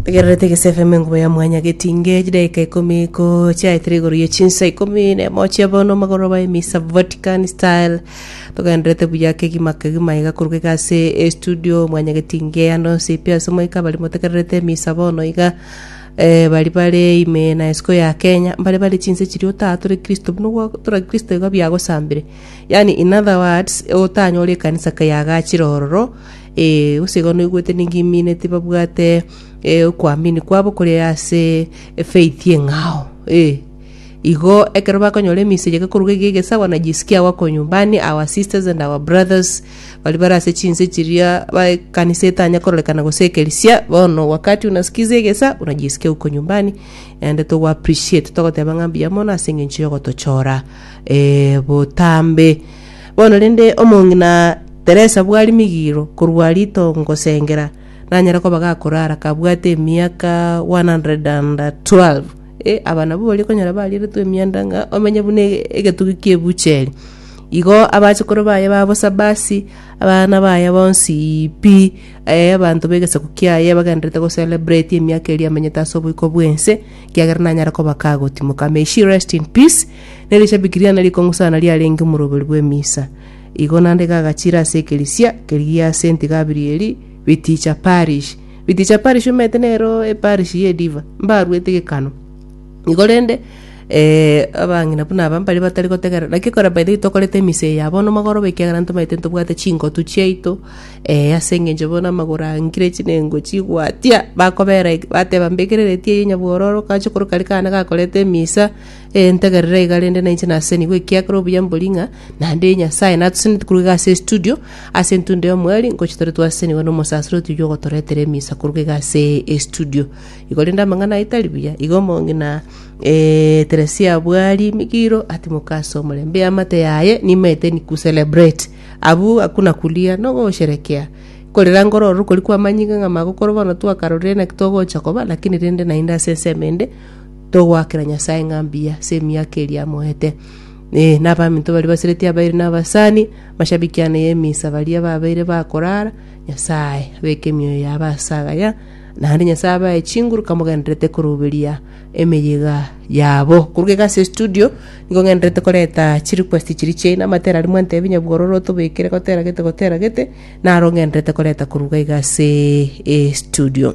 Tegererete Egese FM enkuba ya mwanya getinge chidaika ikomi ko chiaetire igoro ye chinsa ikomi na emo chia bono magoroba emisa Vatican style togenderete buya kegima kegima iga korwa iga ase estudio mwanya getinge ande onsi pi ase moika bari motegererete emisa bono iga eh, bari bare ime na isiko ya Kenya mbare bare chinse chiria otaha tore Kristo buna gwa tora Kristo iga biagosambire yani in other words otanyore ekanisa keyagachire ororo Ee, gose igo noigwete ninki imine tibabwate eh, okoamini kwabo kore ase efaith eng'ao. Ee, igo ekero bakonyora eminsa eyio gekoruga iga egesawa na jisiki agwo konyumbani, our sisters and our brothers baria bare ase chinse chiria ba ekanisa etanya kororekana gose ekerisia, bono wakati unasikiza egesa unajisikia uko nyumbani, naende togo appreciate togoteba ng'a mbuya mono ase eng'encho yogotochora eh, botambe. Bono rende omong'ina Teresa bwari migiiro korwa rito ngosengera, nanyare koba gakorara kabwate emiaka 112. Eh, aba nabwo baria okonyora barieretwe emianda ng'a omenye buna e- egetugi ki'ebucheri. Igo abachukuru baye ba bosa basi, abana baye bonsi pi, eh, abanto b'egesaku kiaye bagendererete gocelebrate emiaka eria amenyete ase oboiko bw'ense, ekiagera nanyare koba kagotimoka. May she rest in peace. Ne rishabiki riane rikong'usana riarenge omoroberi bw'emisa. Igo nande gagachiira ase ekerisia keria gia Saint Gabrieli, Biticha Parish. Biticha Parish omanyete nero eparish y'ediva, mbaruete gekano. Igo rende eh, abang'ina buna aba mbaria batari gotegerera. Naki ekero by the way tokorete emisa eye ya bono mogoroba ekiagera ntomanyete ntobwate chingotu chiaito, eh, ase eng'encho bono amagoro angire chinengo chigwatia, bakobera bateba mbekereretie eye nyabwororo, gacha koroka rikana gakoreta emisa, Ee, ntegerera iga rende nainche nasenigwe, ekiagera obuya mbori ng'a nande Nyasae natoseneti koruga iga ase estudio, ase entunda y'omweri, ngochia tore twasenigwa n'omosaseri otiga ogotoretera emisa koruga iga ase estudio. Igo rende amang'ana aye tari buya, igo omonge na eh, Teresia abwari emigiro, atimoka ase omorembe, eamate yaye nimaete ni ku celebrate. Abwo hakuna kulia, nogosherekea. Korera ngororo rukori kwamanyinga ng'a magokoro bono twakarorire naki togocha koba, lakini rende naende ase ensemo ende, Togoakera Nyasae ng'a mbuya ase emiaka eria amoete. Ee, nabaminto baria basireti abairi nabasani, mashabiki ane y'emisa baria babeire bakorara, Nyasae abeke emioyo yabo ase agaya, naende Nyasae abae chinguru kamogendererete koruberia emeyiga yabo. Koruga iga ase estudio, nigo ng'endererete koreta chirequest chiria chiaino, amatera aria mwantebia nyabwororo otobekere gotera gete gotera gete, naro ng'endererete koreta koruga iga ase estudio.